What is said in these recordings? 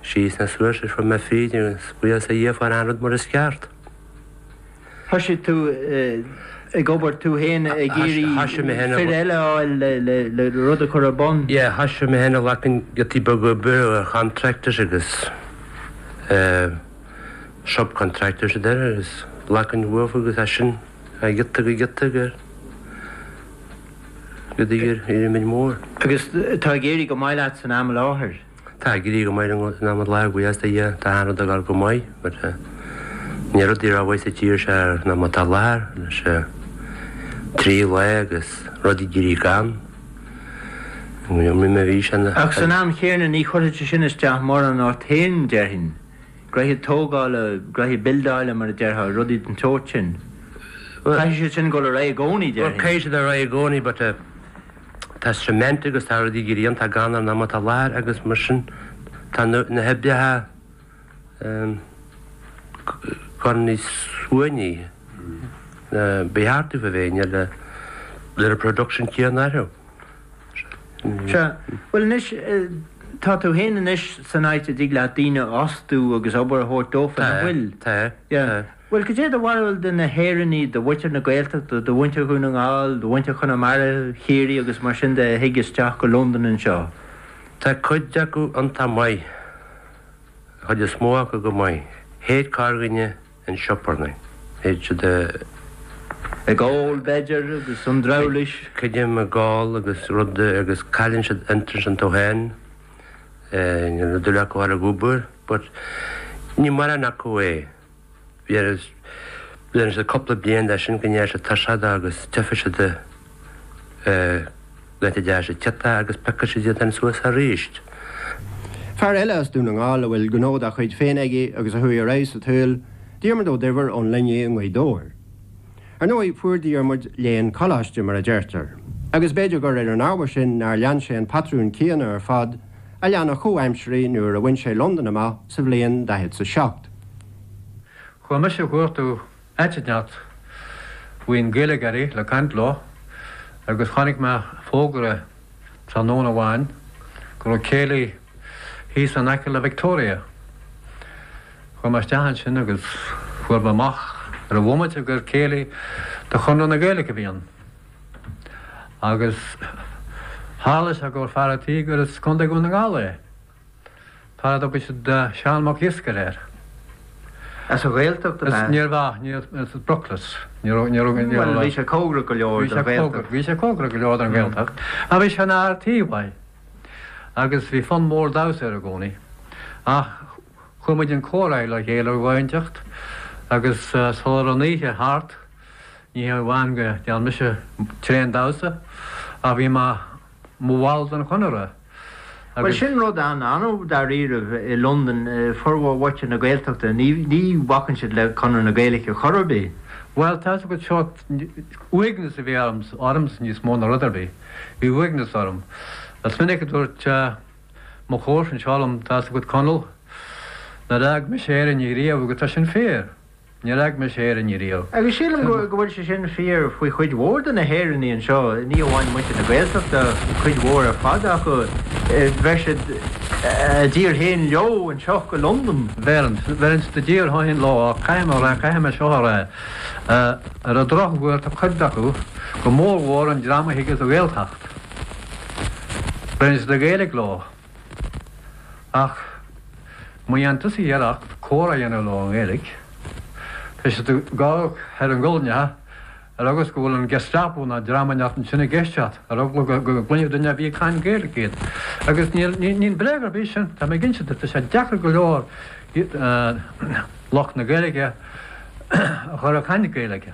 Sheas na sluaite trom air fríd an scrios a dhéanfar aon rud mar is ceart. Thoisigh tú ag obair tú fhéin ag iarraidh fir eile a fháil le rud a chur ar bun? Yeah, thoisigh mé fhéin a ghlacan giotaí beaga oibre ar chontracts agus eh subcontractors a deir agus a ghlacan uafa agus as sin giota go giota go. go dtí rud níos mó. Agus tá ag éirí go maith leat san am i láthair? Tá ag éirí go maith liom san am i láthair, buíochas le Dia. Tá an rud ag dul go maith, but níl rudaí rómhaith sa tír seo san am atá i láthair, anois trí lá agus rudaí ag éirí gann. Ach san am chéanna ní chuirfidh sé sin isteach mórán ort féin, déarfainn. Gnoithe tógála, gnoithe bildeála mar a déarfá, rudaí den tsórt sin. Caithfidh siad sin dul ar aghaidh i gcónaí déarfainn. Caithfidh siad ar aghaidh i gcónaí but eh tá cement agus tá rudaí ag éirí iontach gann san am atá i láthair agus mar sin tá na hoibreacha ehm gone níos suaimhní ná ba cheart dófa a bheith níl an production céanna acu. Sea, bhuel anois, tá tú fhéin anois san áit a dtig leat daoine a fhostú agus obair a thabhairt dófa, nach bhfuil? Sea. Bhuel, cad é do bharúil de na hÉireannaigh, de mhuintir na Gaeltachta, de mhuintir Dhún na nGall, de mhuintir Chonamara, Chiarraí agus mar sin de a thig isteach go Londain anseo? Tá cuid acu iontach maith, an chuid is mó acu go maith. Théid corrdhuine. chun siobarnaí. Bíonn siad ag ól b'fhéidir agus an drabhlás. Creidim ag ól agus rudaí agus cailleann siad interest iontu féin níor dhual acu a ghabháil ag obair but ní maireann acu é. Bíonn siad cúpla bliain de sin go ndeir siad tá siad agus tiocfaidh siad Leo féin agus piocfaidh siad iad féin suas aríst. Fear eile as Dún na nGall a bhfuil gnó dá chuid féin aige agus a chuaigh ar aghaidh sa tsaol, Diarmaid Ó Duibhir ón Luinnigh i nGaoth Dobhair. Ar ndóigh, fuair Diarmaid léann coláiste, mar a deirtear, agus b'fhéidir gur ar an ábhar sin nár lean sé an patrún céanna ar fad a lean a chomhaimsirigh nuair a bhain sé Londain amach sa bhliain 47. Chuala mise a dhúirt tú. Aitneacht. Bhí aon Ghaeilgeoirí le caint leo agus chonaic mé fógra tráthnóna amháin go raibh céilí thíos in aice le Victoria. Chuaigh mé isteach ansin agus fuair mé amach ar an bhomaite gur céilí de Chonradh na Gaeilge a bhí ann. Agus tharla sé go raibh fear a' tí gur as Contae Dhún na nGall é. Fear a dtugadh siad Seán Mac Iasgaire air. As an Ghaeltacht ab ea? Níorbh ea, ní as Brooklyn. Bhuel, bhí sé cóngarach go leor don Ghaeltacht. Bhí sé cóngarach go leor don Ghaeltacht, ach bhí sé ina fhear tí mhaith, agus bhí fonn mór damhsa air i gcónaí. Ach chuir muid an comhrá le chéile ar dhóigh inteacht, agus sula raibh an oíche thart, ní hamháin go ndearna mise tréan damhsa, ach bhí mé. mo bhall den Chonradh agus. Bhuel, sin rud an-annamh dáiríribh i Londain, formhór mhuintir na Gaeltachta, ní bhacann siad le Conradh na Gaeilge chor ar bith. Bhuel, tá's agat, seo, uaigneas a bhí ormsa níos mó ná rud ar bith, bhí uaigneas orm. Is minic a dúirt mo chomharsa anseo liom, tá's agat Conall, nár fhág mise Éire riamh agus tá sin fíor. Níor fhág mise Éirinn riamh. Agus sílim go bhfuil sé sin fíor faoi chuid mhór de na hÉireannaigh anseo, ní amháin muintir na Gaeltachta, cuid mhór ar fad acu, bheir siad a dtír féin leo anseo go Londain. Bheir, bheir siad a dtír féin leo, caithfidh mé a rá, caithfidh mé seo a rá, ar an drochuair tá cuid acu, go mór mhór an dream a thig as an Ghaeltacht, bheir siad an Ghaeilge leo. Ach má dhéanann tusa iarracht comhrá a dhéanamh leo i nGaeilge, tá siad ag amharc thar a ngualainn amhail agus go bhfuil an Gestapo ná dream inteacht ansin ag éisteacht, ar eagla go gcluinfidh duine ar bith ag caint Gaeilge iad. Agus níl bréag ar bith ansin, tá mé ag inse duit, tá sé deacair go leor lucht na Gaeilge a chur ag caint Gaeilge.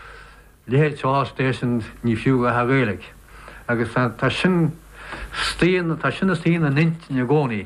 leithéid Solar Station ní fiú bheith ag Gaeilge agus tá sin tá sin istigh ina n-intinn i gcónaí.